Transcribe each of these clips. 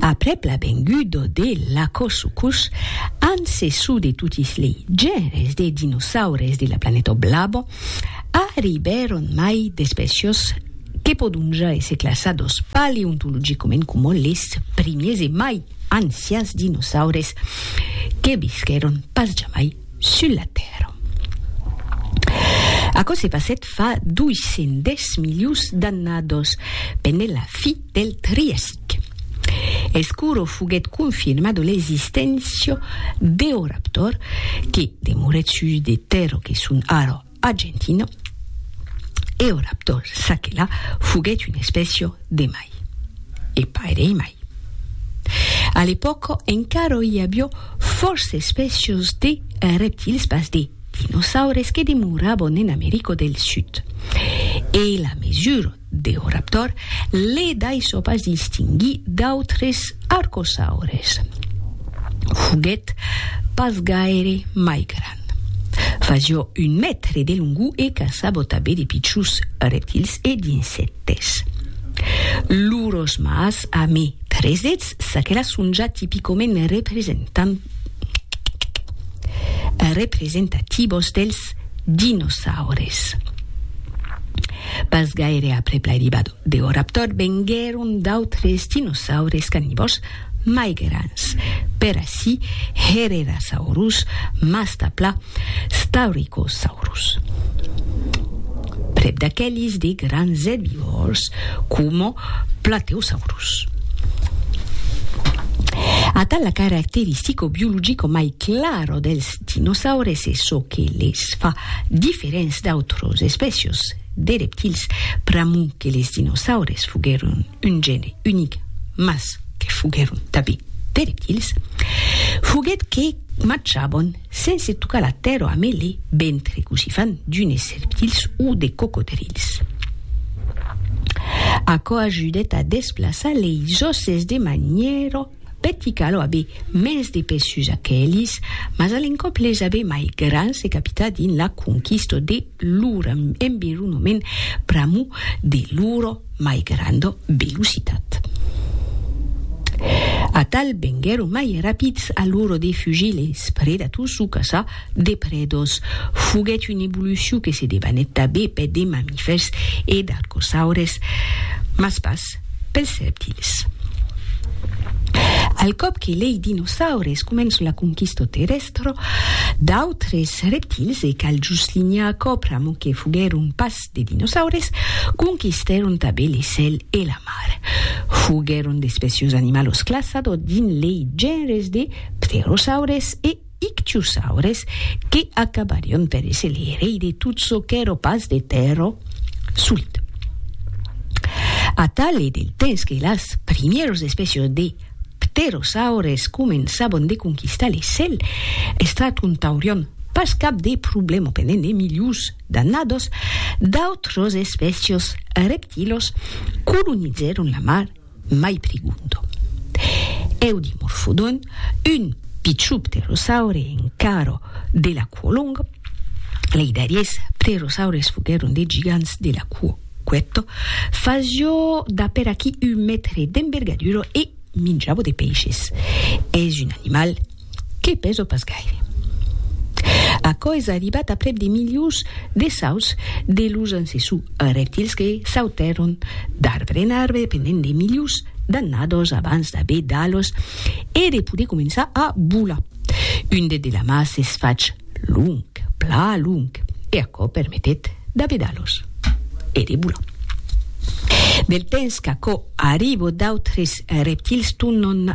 Aprèp la venguda de l'Acossucus, ancessor de totis lei genres de dinosaures de la planeta blava, arribèron mai d'espècias que pòdon ja èsser classadas paleontologicament coma les primiers e mai ancians dinosaures que visquèron pas jamai sul la Tèrra. Aquò se passèt fa 210 milions d'annados, pendent la fi del Triassic. Escuro foguèt confirmado l'existéncia d'Eoraptor, que demorèt sus de terra que son ara Argentina, Eoraptor saquela foguèt una espècia de mai, e pairei mai. A l'epòca encara i aviá fòrça espècias de reptils pas de dinosaures que demoravan en America del Sud, e la mesura D'Eoraptor, le daissò pas distinguir d'autres arcosaures. Foguèt pas gaire mai grand. Fasió un mètre de longor e caçava tanben de pichons reptils e d'insèctes. Lors mâts amé tres dets, çaquelà son ja tipicament representativos dels dinosaures. Pas gaire aprèp l'arribada deu raptor venguèron d'autres dinosaures carnivòrs mai grands, per ací, Herrerasaurus, Mastapla, Staurikosaurus. Prèp d'aqueles de grands erbivòrs coma Plateosaurus. Atau la caracteristico biologico mai clara dels Dinosaures e çò que les fa diferents d'autras espècias de reptils, pr'amor que les dinosaures foguèron un gène unic mas que foguèron tanben de reptils, foguèt que marchavan sense tocar la tèrra amé le ventre cossí fan d'unes reptils o de cocodrils. Aquò ajudèt a desplaçar leis òsses de manièra Pèti cal aver mès de pès sus aquelis, mas a l'encòp les aver mai grans se capita dins la conquista de lor environament pr'amor de lor mai granda velocitat. Atal venguèron mai rapids a l'ora de fugir les predators o caçar de prèdas. Foguèt una evolucion que se debanèt tanben per de mamifèrs e d'arcosaures, mas pas Art. Pels rèptils. Al còp que lei dinosaures començon la conquisto terrèstra d'autres rèptils, e cal juslinhar aquò pr'amor que foguèron pas de dinosaures, conquistèron tanben le cèl e la mar. Foguèron d'espècios animalos classado dins lei genres de pterosaures e Ictiosaures que acabarion per èsser lei rei de tot çò qu'èro pas de tèrra solit. Atal e del temps que las primièros espècios de pterosaures començabon de conquistar le cèl, estraton taurion pas cap de problema pendent de milius d'annados, d'autros espècios reptilos colonizèron la mar Mai pregunto. Eudimorphodon, un pichon pterosaure encaro de la cuo long, lei darriers pterosaures foguèron de gigants de la cuo cuèto, fasio d'a per aquí un mètre d'envergadura e minjavo de peishes. Es un animal Que peso pas gaire. Aquò es arribat aprèp de milions de sauts de los ancessò reptils que sautèron d'arbre en arbre pendent de milions d'annados abans d'aver d'alos e de poder començar a volar. Un det de la mà s'es fach long, pla long, e aquò permetèt d'aver d'alos e de volar. Del temps qu'aquò arribo d'autres reptils tornon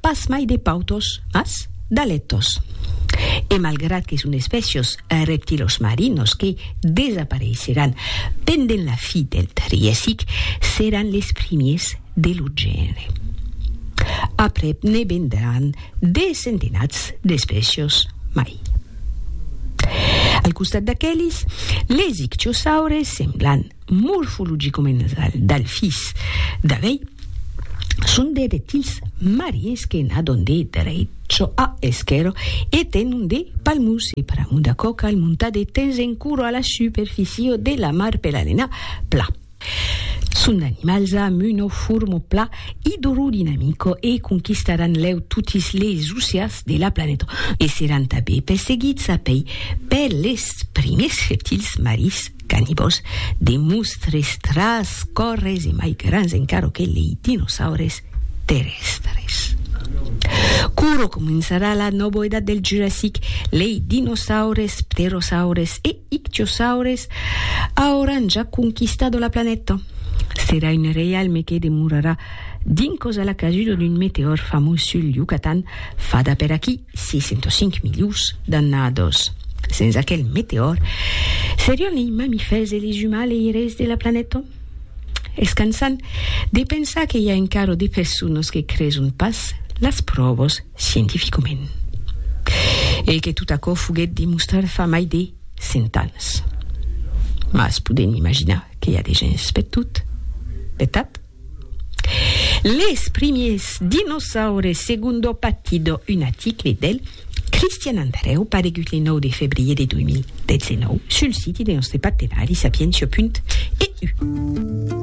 Pas mai de pautos, mas d'alètos. E malgrat que son espècios reptilosmarinos que desapareisseràn pendent la fi del Triasic, seràn les primiers de lo genre. Aprèp ne vendràn de centenats d'espècios mai. Al costat d'aquelis, les ictiosaures semblan Morfologicomensal del fils d'avei son de reptils marins que nadon de drecho a esquero e tenon de palmus e pramo de coca al montar de tens en curo a la superficio de la mar per alenar pla. Son d'animals amb uno formo pla idrodinamico e conquistaràn lèu totis les oceas de la planeta e seràn tanbé perseguits a pei per les primers reptils marins. Canibòs, de mostres, tras, còrres e mai grans encara que lei dinosaures terrèstres. Curo començarà la nòvo edat del Jurassic, lei dinosaures, pterosaures e ictiosaures auràn ja conquistado la planeta. Serà un reialme que demorarà dins causa la casuda d'un meteòr famós sul Yucatan fada per aquí. 605 milius d'annados. Sens aquel meteòr, serion lei mamifèrs e lei umaleires de la planèta? Es cansant de pensar que i a encaro de personas que creson pas las pròvas scientificament. E que tot aquò foguèt demostrat fa mai de 100 ans. Mas podem imaginar que i a de gents per tot, vertat? Les primiers dinosaures segundo Patido, un article del Cristian Andrèu paregut le 9 de febrier de 2019 sul siti de nòstre partenari sapientia.eu.